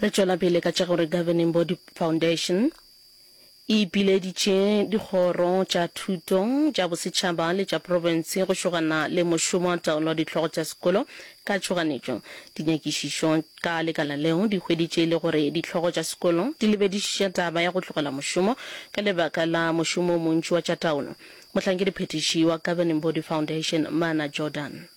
Re tšwela pele ka tša gore Governing Body Foundation e ipileditše dikgoro tša thuto, tša bosetšhaba le tša profense go šogana le mošomo wa taolo wa dihlogo tša sekolo ka tšhoganetšo. Dinyakišišo ka lekala leo di hweditše e le gore dihlogo tša sekolo di lebedišiša taba ya go tlogela mošomo ka lebaka la mošomo o montši wa tša taolo. Mohlankedi phethiši wa Governing Body Foundation, Mana Jordan.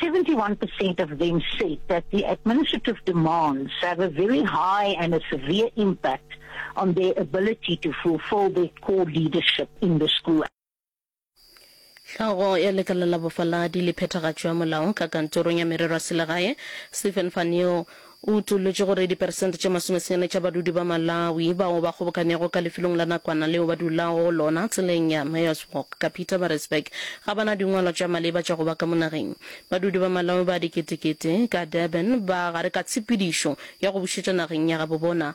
71 percent of them said that the administrative demands have a very high and a severe impact on their ability to fulfill their core leadership in the school. Hlogo ya lekala la bofaladi le phethagatšo ya molaong ka kantorong ya merero ya selegae, Stephen Van Neel, O utolotše gore diperesente tše masomesenyane tša badudi ba Malawi bao ba kgobokanego ka lefelong la nakwana leo ba dulago go lona tseleng ya Mayor's Walk ka Pietermaritzburg ga ba na dingwalwa tša maleba tša go ba ka mo nageng. Badudi ba Malawi ba diketekete ka Durban ba gare ka tshepedišo ya go bušetšwa nageng ya gabobona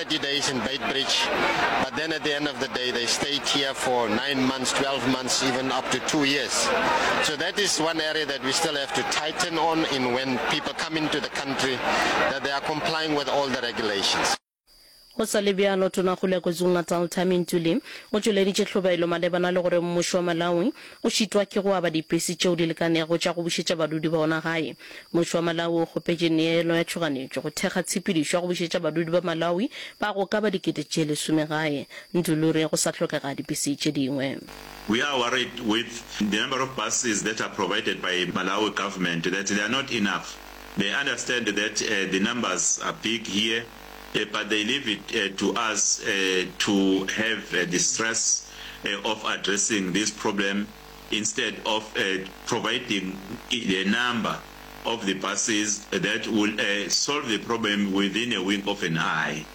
30 days in Beitbridge, but then at the end of the day, they stayed here for nine months, 12 months, even up to two years. So that is one area that we still have to tighten on in when people come into the country, that they are complying with all the regulations. Go sa le bjalo, Tona Kgole ya KwaZulu-Natal Tami Ntuli o tšweleditše tlhobaelo malebana le gore mmušo wa Malawi O šitwa ke go aba dipesi tšeo di lekanego tša go bušetša badudi ba ona gae. Mmušo wa Malawi o kgopetše neelo ya tšhoganetšo go thekga tshepedišo ya go bušetša badudi ba Malawi ba go ka ba dikete tše lesome gae ntle le re go sa hlokega dipesi tše dingwe. We are worried with the number of buses that are provided by Malawi government that they are not enough. They understand that the numbers are big here. eh, but they leave it eh, to us eh, to have eh, the stress eh, of addressing this problem instead of eh, providing the number of the buses that will eh, solve the problem within a wink of an eye.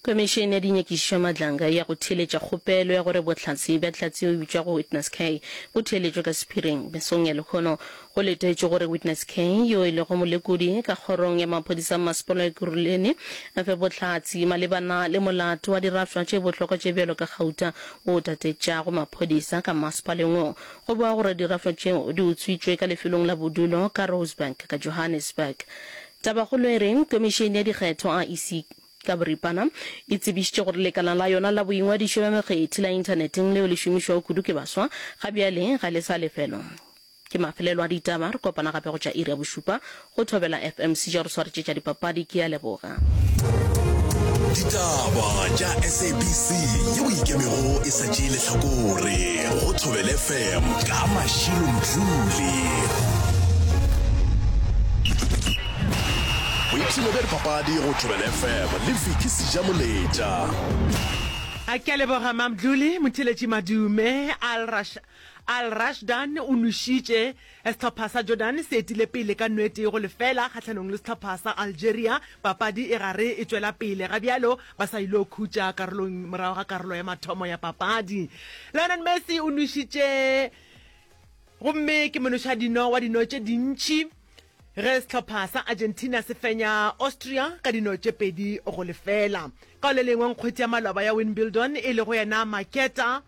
Komišene ya Dinyakišišo Madlanga ya go theeletša kgopelo ya gore bohlatse bja hlatse o bitšwago Witness K bo theeletšwe ka sephiring mesong ya lekhono Go letetšwe gore Witness K, yo e lego molekodi ka kgorong ya maphodisa Mmasepala wa Ekurhuleni, a fe bohlatse malebana le molato wa dirafša tše bohlokwa tše bjalo ka gauta o tatetšago maphodisa ka mmasepaleng wo. Go boa gore dirafša tšeo di utswitšwe ka lefelong la bodulo ka Rosebank ka Johannesburg. Tabakgolo e re Komišene ya Dikgetho, IEC, ka boripana e tsebišitše gore lekala la yona la boingwadišo bja mekgethi la inthaneteng leo le šomišwago kudu ke baswa ga bjale ga le sa lefelwa. Ke mafelelo a ditaba, re kopana gape go tša iri ya bošupa go Thobela FM. Sejo a re swaretše tša dipapadi, ke a leboga. Ditaba tša SABC yeo e ikemego e sa tšee lehlakore go Thobel FM ka Mashilo Mdluli. Boipshino bja dipapadi go Thobel FM le Vicky Sejamoletša. A ke a leboga Mamdluli, Motheletši Madume, Al Rasha. Al Rashdan o nwešitše. Sehlopha sa Jordan se etile pele ka no e tee go lefela kgahlanong le sehlopha sa Algeria. Papadi e gare e tšwela pele ga bjalo ba sa ilo khutša karolong morago ga karolo ya mathomo ya papadi. Lionel Messi o nwešitše gomme ke monošadino wa dino tše dintši ge sehlopha sa Argentina se fenya Austria ka dino tše pedi go lefela. Ka o le lengwe nkgwethi ya maloba ya Wimbledon e lego yena Marketa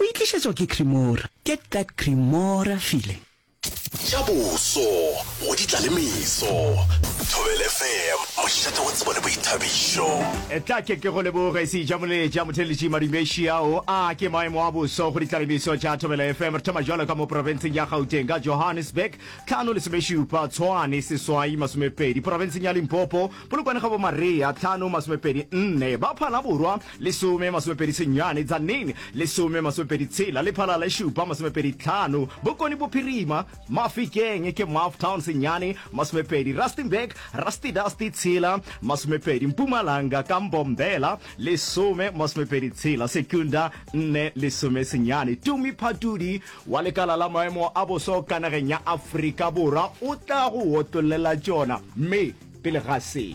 O e tlišetšwa ke Cremora. Get that Cremora feeling. Tša boso go di tla le meso. Thobel FM, mošate wa tsebo le boithabišo. Etla ke ke go leboge se ja moleja motheletši madumeši ao a ke maemo a boso go ditlalemeso tša thobela fm re thoma jalo ka mo porofenseng ya gauteng ka johannesburg tlhano lesomešupa tshwane seswai masomepedi porofenseng ya limpopo polokwane ga bo marea tlhano masomepedi nne ba phalaborwa Lesome masomepedi senyane tsa ning, lesome masomepedi tshela le phalala e šupa masomepedi tlhano, Bokone Bophirima, Mafikeng ke Maftown senyane, masomepedi Rustenburg, Rustidasti tshela, masomepedi Mpumalanga ka Mbombela, lesome masomepedi tshela Secunda, nne lesome senyane. Tumi Phatudi wa lekala la maemo a bosa o ka nageng ya Afrika Borwa o tla go otollela tšona, mme pele ga se.